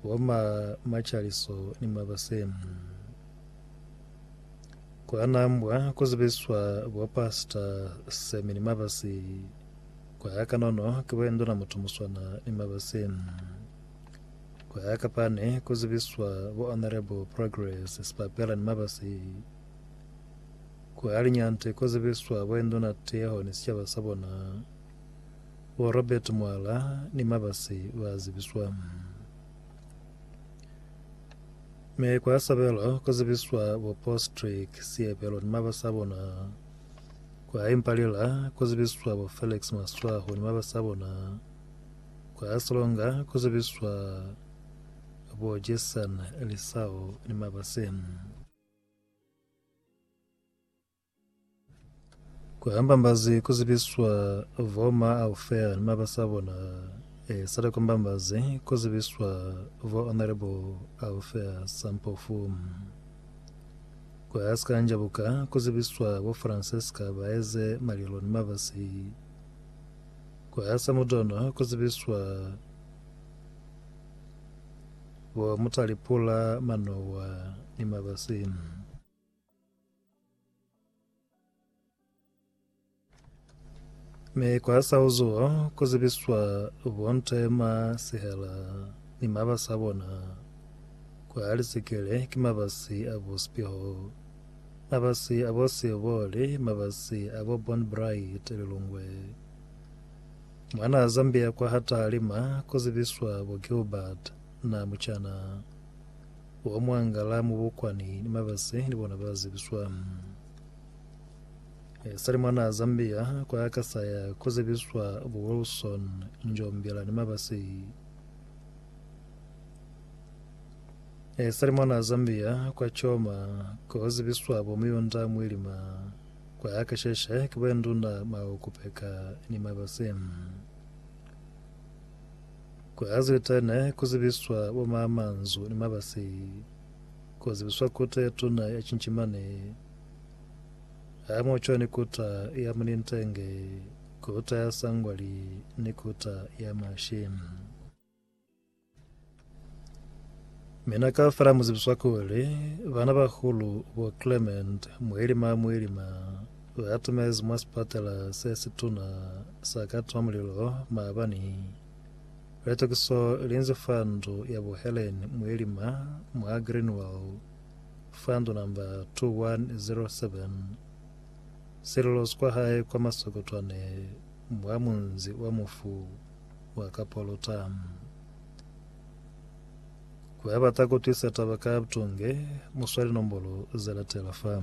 wa ma macaliso ni ma basemu. Kwa nambwa ku zibiswa bo pasta semi ni mabasi. Kwa ya kanono ki bo endona mutu muswana ni mabasemu. Kwa ya kapane ku zibiswa bo honorable progress sipapela ni mabasi. Kwa linyante ku zibiswa bo endona teho ni sicaba sa bona. Bo Robert Mwala ni mabasi ba zibiswa. Mi kwa sabelo ku zibiswa bo Postrick Siebelo ni mabasi a bona. Kwa Impalila ku zibiswa bo Felix Maswaho ni mabasi a bona. Kwa Silonga ku zibiswa bo Jason Lisao ni mabasi. Ku hambambazi ku zibiswa vo Ma Alfea ni mabasa a bona, e sala ku hambambazi ku zibiswa vo Honourable Alfea Sampofu. Ku ha si ka njabuka ku zibiswa bo Francesca Baeze Malilo ni mabasi. Ku ha sa mutono ku zibiswa bo Mutalipula Manowa ni mabasi. Mi kwa sa uzuho ku zibiswa bonte ma sihela ni mabasi a bona kwa lisikele ki mabasi a bo Sipiho, mabasi a bo Sioboli, mabasi a bo Bon Bright Lilongwe. Mwana Zambia kwa ha Taalima ku zibiswa bo Gilbert Namuchana. Wa mwangala mu bukwani ni mabasi ni bona ba zibiswa. E sali mwana Zambia kwa ya kasaya ku zibiswa bu Wilson Njombela ni mabasi. E sali mwana Zambia kwa Choma ku zibiswa bu Muyunda Mwilima kwa ya kasheshe ki bwenduna Maokupeka ni mabasi. Ku Hazete ne ku zibiswa bo maamanzu ni mabasi, ku zibiswa kuta ye tuna ya cincimani, hamoho cwañi ni kuta ya munintenge, kuta ya sangwali, ni kuta ya mashi. Mina kaufela mu zibiswa kuli, Banabahulu bo Clement, Muelima, Muelima. Ba atumezi mwa sipatala se situna sa Kathmandu-Mulilo maabani litokiso linzi fa ndu ya bo Helen Mwelima mwa Greenwell fa ndu namba 2107. Sililo sikwa hae kwa Masokotwane mwa munzi wa Mufu wa Kapolota. Ku abata ku twisa taba ka butunge, mu swali nombolo ze latela fa.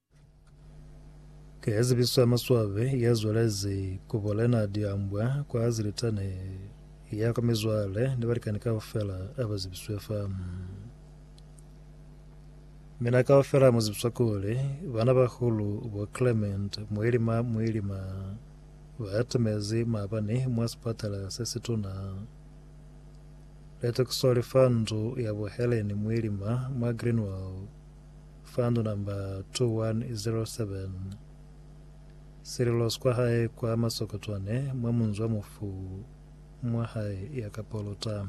Ka ya zibiso ya maswabi ya zwelezi ku bulena diambwa kwa zilitani ya kwa mizwale ni balikani kaufela aba zibiswe fa. Mina kaufela mu zibiswa kuli bana bahulu bo Clement Muilima Muilima ba atumezi maabani mwa sipatala se situna. Letokiso li fa ndu ya buheleni Muilima mwa Greenwell. Fund number 2107 Sililo skwa hae kwa Masokotwane mwa munzwa mufu mwa hae ya ka Polota.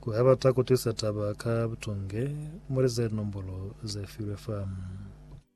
Ku ha bata ku tisa taba ka butunge, muli ze nombolo ze filwe fa.